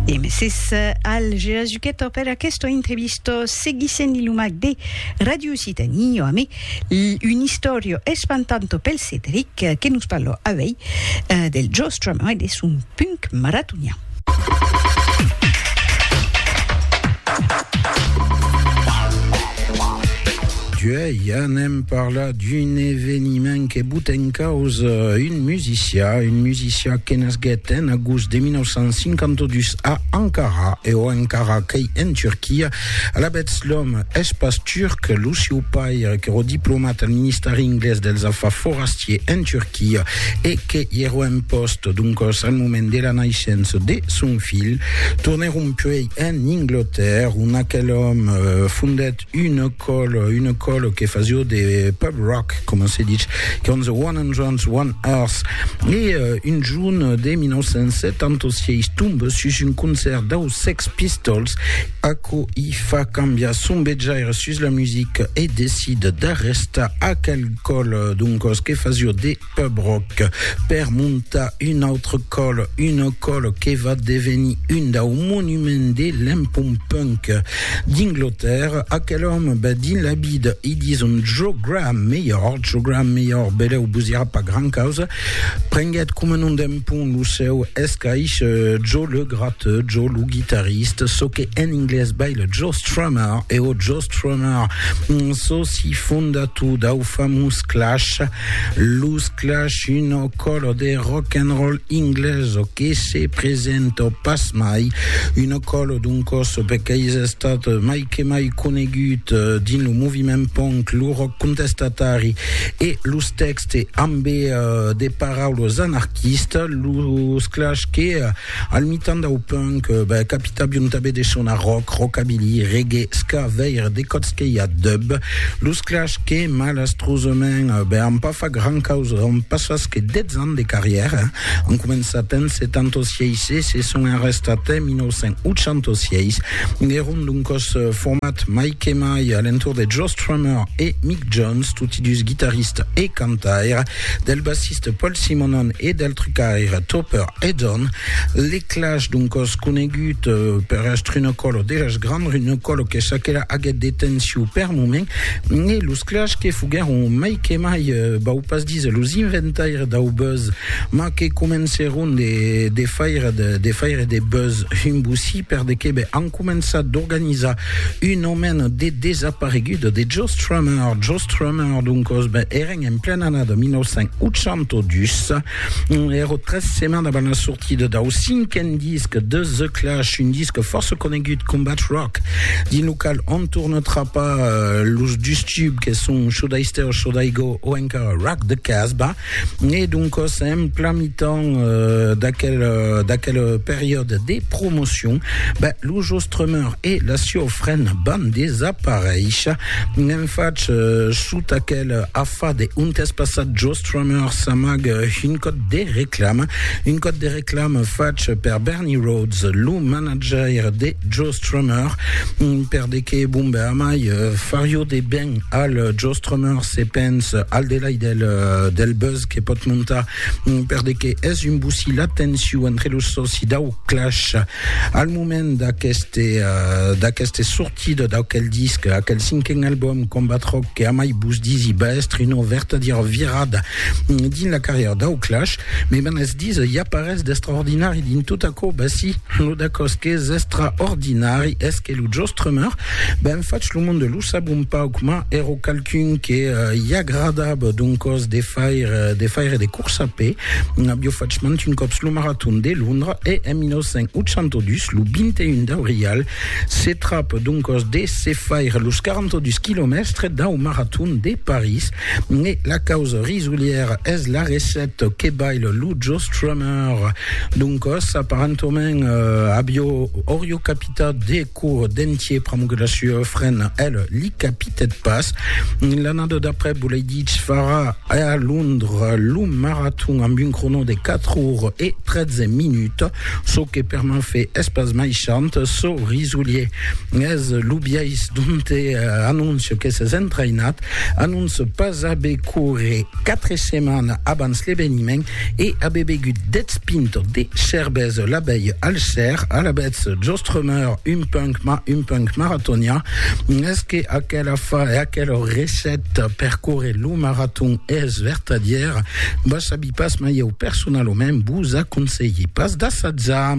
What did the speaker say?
E meses al Gerazuqueto per aquesta entrevista seguissent li lumac de Radio Occitanie, jo amé un istorio espantanto pel Cedric que nos parlò avei del Joe Strummer e de son punk maratonian. Joe, ja n'èm parlat. d'un eveniment que bota en causa un musicià, un musicià que nasguèt en agost de 1952 a Ankara, e o Ankara qu'ei en Turquia. Alavetz, l'òme es pas turc, lo sieu paire qu'èro diplomat al Ministèri Inglés dels Afars Forastiers en Turquia e que i èro en pòst, doncòs, al moment de la naissença de son filh, tornèron puèi en Inglotèrra, ont aquel òme fondèt Une ecole, une ecole que fasio de pub rock, comment se dit, quand the 101 Earth. Et euh, une june de 1976 tombe sus un concert dau Sex Pistols, aquo i fa cambiar son betjaire sus la musique et decide d'arrestar aquel col, donc, que fasio de Pub Rock, per montar un autre còl, una còl que va devenir un dau monuments de l'empont punk d'Inglotèrra, aquel òme va dins la vida e dins un jo Graham melhor, jo Graham melhor, beleu vos dira pas gran causa, prenguèt coma nom d'empont lo seu escaish Joe le Gratteux, Joe lo guitarriste, çò que en inglés vai le Joe Strummer, e o Joe Strummer, soci fondator dau famós Clash, Los Clash, una còla de rock and roll inglesa que se presenta pas mai, una còla doncòs qu'es estat mai que mai conegut dins lo moviment punk, lo rock contestatari e los tèxtes ambe de paraulas anarquistas, los Clash que Al mitan dau punk, beh, capita biun tabé de sonar rock, rockabilly, reggae, ska, veire de còps que i a dub. Los Clash que, malastrosament, beh, an pas fach gran causa, an pas fach que 10 ans de carrièra, an començat en 76 e se son arrestat en 1986. Èron d'un còs format mai que mai a l'entorn de Joe Strummer e Mick Jones, toti dus guitaristas e cantaires, del bassista De Paul Simonon e del trucaire Topper Edon, l'eclage d'un còs conegut per Astrunocòlo de las Grand Runocòlo que çaquelà aguèt de tensiu per moment e los clash que foguèron mai que mai, vau pas díser los inventaires dau buzz, mas que comencèron de faire de faire de buzz un bossí per de qué ben, començat d'organizar un aument de desapareguts de Joe Strummer. Joe Strummer, doncos, ben, èren en plena annada 1982, èro tres setmanes avant la sortida dau cinquen disc de The Clash, un disc fòrça conegut, Combat Rock, dins lo qual on torna trapar los dus tubs que son Should I Stay or Should I Go o encara Rock the Casbah. Né doncòs en plan mitan d'aquel d'aquel periòde de promocion, ben lo Jostrummer e la sieu frena van desaparéisher. N'en fach sota aquel afar de ont es passat Jostrummer s'amague un còd de reclama, un còd de reclama fach per Bernie Rhodes, lo manajaire de Jostrummer, per de que bon ben amai farió de ben al Joe Strummer se pens al delai del, del buzz que pot montar per de que es un bocí la tensiu entre los soci dau Clash al moment d'aqueste uh, d'aqueste sortida d'aquel disc, aquel cinquen album Combat Rock que amai vos disi va estre una vertadiera virada dins la carrièra dau Clash, me ben es dis i a parès d'extraordinari dins tot aquò, ben si, lo d'aquòs qu'es extraordinari es que lo Joe Strummer ben fach lo monde lo sap un pauc, mas èro qualqu'un que i agradava d'un còs de faire de, faire de corsa a pè. Avió fach mant un còps lo maraton de Londra e en 1982, lo 21 d'aurial, se trap d'un còs de se faire los 42 quilomèstres dau maraton de París. E la causa risolièra es la recèt que baila lo Joe Strummer d'un còs, aparentament avió, aurió capitat de Cour d'entier pramugue la sua frena, el li capitèt pas. L'annada d'après volèi ditz farà a Londres lo maraton amb un crono de 4 ores e 13 minuts, çò que per m'en fe es pas mai chant, çò risolier es lo biais donte anóncia que s'es entrainat, anóncia pas aver coure 4 setmanes abans l'eveniment, E abe begut dètz pintes de cervesa la vèia al ser, alavetz jos tremeur un punc, mas un punc maratonian, es que aquela fa e aquela receta per córrer lo maraton es vertadièra? Vos sabi pas, mas ieu personalament vos aconselhi pas d'assatjar.